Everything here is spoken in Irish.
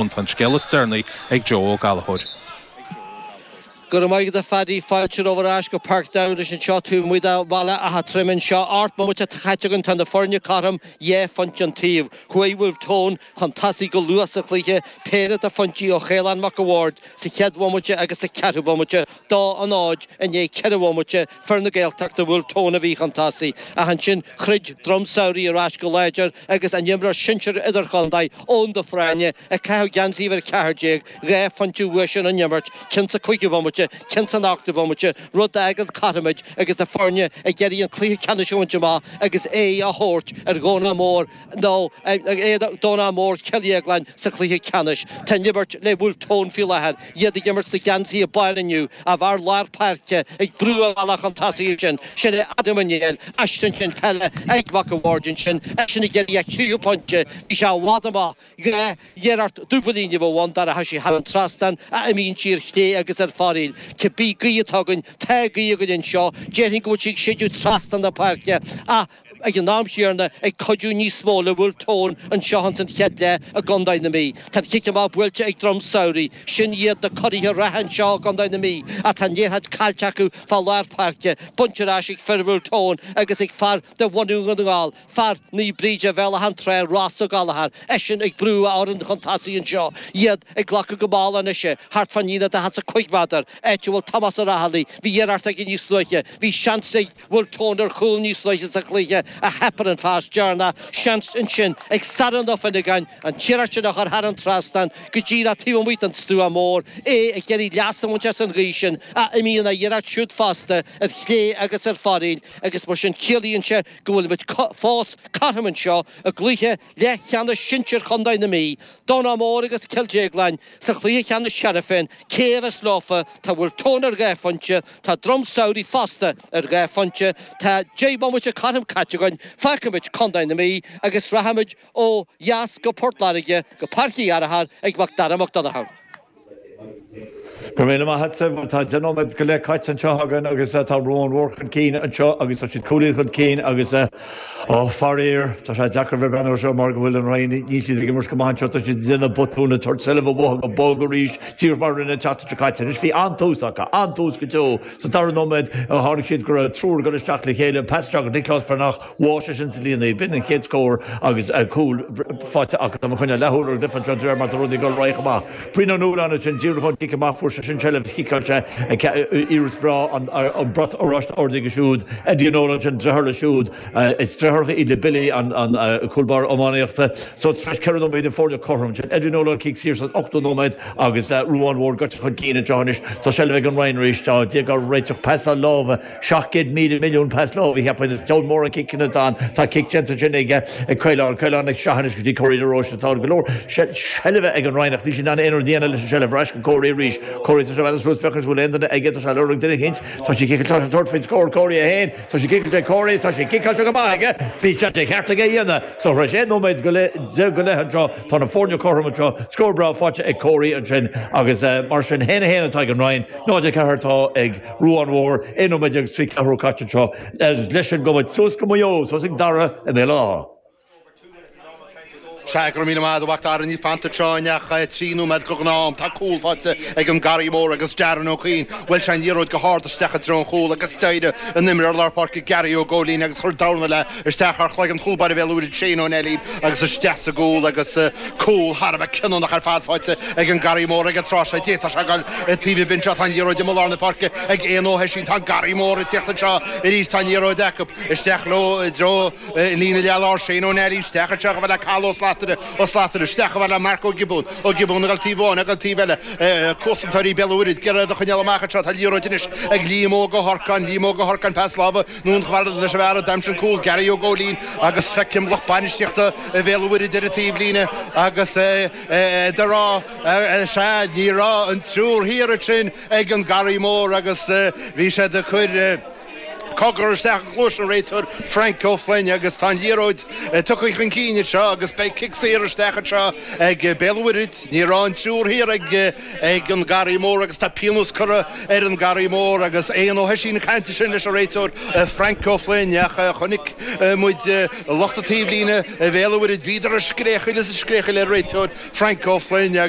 Ann, tá an scéal is deireanaí ag Joe Ó Gallchóir. Go raibh maith agat a Phaddy, fáilte romhat ar ais go Páirc Dowders anseo taobh amuigh de Bhaile Átha Troim anseo. Ocht mbomaite atá caite againn tá na foirne cothrom dhá phointe an taobh. Chuaigh Bhulf Tón chun tosaigh go luath sa chluiche, péire de phointí ó Chaolán Mac an Bhaird sa chéad bhomaite agus sa ceathrú bomaite dó a náid i ndiaidh ceithre bhomaite fir na Gaeltachta Bhulf Tón a bhí chun tosaigh, ach ansin throid Droim Samhraidh ar ais go láidir agus a n-imreoir sinsir idirchontae, Eoghan de Fréine, ag caitheamh geansaí uimhir 14, dhá phointe uaidhsean ón imirt, ceann sa chúigiú bhomaite, ceann san ochtú bomaite, rud a fhágann cothrom muid agus na foirne ag iarraidh an cluiche ceannais a bhaint amach agus aghaidh a thabhairt ar Dhomhnach Mór nó in éadan Domhnach Mór Cill Dhéagláin sa chluiche ceannais. Tá an imirt le Bhulf Tón faoi láthair, iad ag imirt sa gheansaí a baill inniu, a bhfear lár páirce ag brú a bhealach chun tosaigh ansin. Sin é Adam Ó Néill, aiste ansin, peile ag Mac an Bhaird ansin, eisean ag iarraidh a thríú pointe, bhí sé i bhfad amach, dhá iarracht dúbailín a bheadh ann dá rachadh sí thar an trasnán, ach imíonn sí ar chlé agus ar fóraoil. Cibé gaoth atá againn, tá gaoth againn anseo, déarfainn go bhfuil sí ag séideadh trasna na páirce ach, ag an am chéanna ag cuidiú níos mó le Wolfe Tone anseo ins an chéad leath i gContae na Mí. Tá an cic amach buailte ag Droim Samhraidh. Sin iad na curaithe reatha anseo i gContae na Mí ach tá an liathróid caillte acu fá lár páirce. Bainte ar ais ag fir Wolfe Tone agus ag fear de bhunadh Dhún na nGall, fear Naomh Bríde, Bhéal Átha an tSratha, Ross Ó Gallchóir. Eisean ag brú a fhoireann chun tosaigh anseo, iad ag glacadh go mall anois é. Thart fán líne daichead is a cúig méadar, áit a bhfuil Tomás Ó Raghallaigh. Bhí iarracht aige níos luaithe. Bhí seans ag. Bhulf Tón ar chúl níos luaithe sa chluiche ach theip ar an phas deireanach, seans ansin ag Sárán Ó Fionnagáin an iarracht a chur thar an trasnán go díreach taobh amuigh den stua mór, é ag iarraidh leas a bhaint as an ghaoth sin ach imíonn a iarracht siúd fosta ar chlé agus ar fóraoil agus mar sin ciallaíonn sé go bhfuilimid fós cothrom anseo i gcluiche Leathcheannais Sinsir Chontae na Mí, Domhnach Mór agus Cill Dhéagláin sa Chluiche Cheannais cheana féin, cé a bheas leofa, tá Bhulf Tón ar dhá phointe, tá Droim Samhraidh fosta ar dhá phointe, tá deich mbomaite cothrom caite againn, fágfaimid Contae na Mí agus rachaimid ó dheas go Port Láirge go Páirc Uí Fhearchair ag Mac Dara Mac Donnchadha. Go raibh míle maith agat bhuel, tá deich nóiméad go leith caite anseo againn agus tá Ruán Mór chun cinn anseo agus tá siad cúilín chun cinn agus ó faraor tá sé deacair a bheith ag breathnú air seo mar go bhfuil an Rinn, níl siad ag imirt go maith anseo, tá siad ag déanamh botúin ag tabhairt seilbh amach go bog arís díreach mar a rinne an tseachtain seo caite anois bhí an-tús acu, an-tús go deo sa dara nóiméad tháinig siad go raibh triúr ag dul isteach le chéile, pas ó Nicholas Breathnach, bhuail sé sin sa líon í b'in, an chéad scór agus cúl faighte acu i gcoinne Leath Ulaidh, Lifford, anseo de réir mar atá rudaí ag goil réidh chomh maith. Brian Nolan ansin, díreach ón gcic amach, fuair sé sin seilbh is chiceáil sé iarracht bhreá an brat oráiste ard aige siúd, Eddie Nolan ansin, deartháir leis siúd is deartháireacha iad le Billy an cúl báire iománaíochta. So tar éis ceithre nóiméad na foirne cothrom ansin, Eddie Nolan cic saor san ochtú nóiméad agus Ruán Mhór gaibhte chun cinn anseo anois tá seilbh ag an Rinn arís, dá dtéadh á réiteach pas láimhe 700 milliún pas láimhe a cheapann is ceann mór an cic ina dán tá cic déanta sin aige ag Caolán, Caolán Nic Seaghain is go dtí Corey de Róiste tá go leor seilbhe ag an Rinn ach níl siad in ann aon rud a dhéanamh leis an seilbh ar ais go Corey arís Corey tá sé fada suas féachaint bhfuil aon duine aige tá sé ag lorg duine eicínt tá sé ciceáilte tá sé ag tabhairt faoin scór Corey 1 tá sé ciceáilte Corey tá sé ciceáilte go maith aige bhí sé de cheart aige a dhéanamh so tar éis 11 nóiméad go leith anseo tá na foirne cothrom anseo scór breá faighte ag Corey ansin agus mar sin 1 1 atá ag an Rinn 0 4 atá ag Ruán Mhór, aon nóiméad déag is trí ceathrú caite anseo leis sin gabhfaidh muid suas go Maigh Eo, suas ag Dara i mBéal Átha. Sea go raibh míle maith agat a Mhac Dara níl fanta anseo anois ach trí nóiméad de ghnáth-am, tá cúl faighte ag an Garraí Mór agus Darren Ó Cuinn, bhuail sé an liathróid go hard isteach i dtreo an chúil agus d'éirigh an imreoir lár páirce Gary Ó Góilín agus chuir dorn léi. Isteach thar chloigeann chúl báire Bhéal an Mhuirthead Shane Ó Neillín agus isteach sa gcúl agus cúl thar a bheith cinniúnach ar fad faighte ag an Garraí Mór ag an tráth seo de. Tá sé ag goil i dtaobh an bhinse. Tá an liathróid i lár na páirce ag Eoin Ó hOisín. Tá an Garraí Mór ag tíocht anseo arís. Tá an liathróid acu. Isteach leo i dtreo líne leath lár. Shane Ó Neillín isteach anseo chomh fada le Cathal Ó Slatara. Ó Slatara isteach chomh fada le Mark Ó Giobúin. Ó Giobúin ag dul taobh amháin ag dul taobh eile. Cosantóirí Bhéal an Mhuirthead ag iarraidh iad a choinneáil amach anseo. Tá an liathróid anois ag Liam Óg Ó hOrcáin. Liam Óg Ó hOrcáin pas láimhe. anonn chomh fada leis an bhfear a d'aimsigh an cúl, Gary Ó Góilín, agus feicim lucht bainistíochta Bhéal an Mhuirthead ar an taobhlíne agus iad ag rá, Sea, ní raibh an triúr thiar ansin ag an Garraí Mór agus bhí siad ag cur cogar isteach i gcluais an réiteoir, Frank Ó Floinn, agus tá an liathróid tugtha chun cinn anseo agus beidh cic saor isteach anseo ag Béal an Mhuirthead. Ní raibh an triúr thiar ag. ag an Garraí Mór agus tá pionós curtha ar an Garraí Mór agus Eoin Ó hOisín ag caint ansin leis an réiteoir Frank Ó Floinn ach chonaic muid lucht an taobhlíne Bhéal an Mhuirthead Bhíodar ag scréachaíl is ag scréachaíl ar an réiteoir Frank Ó Floinn agus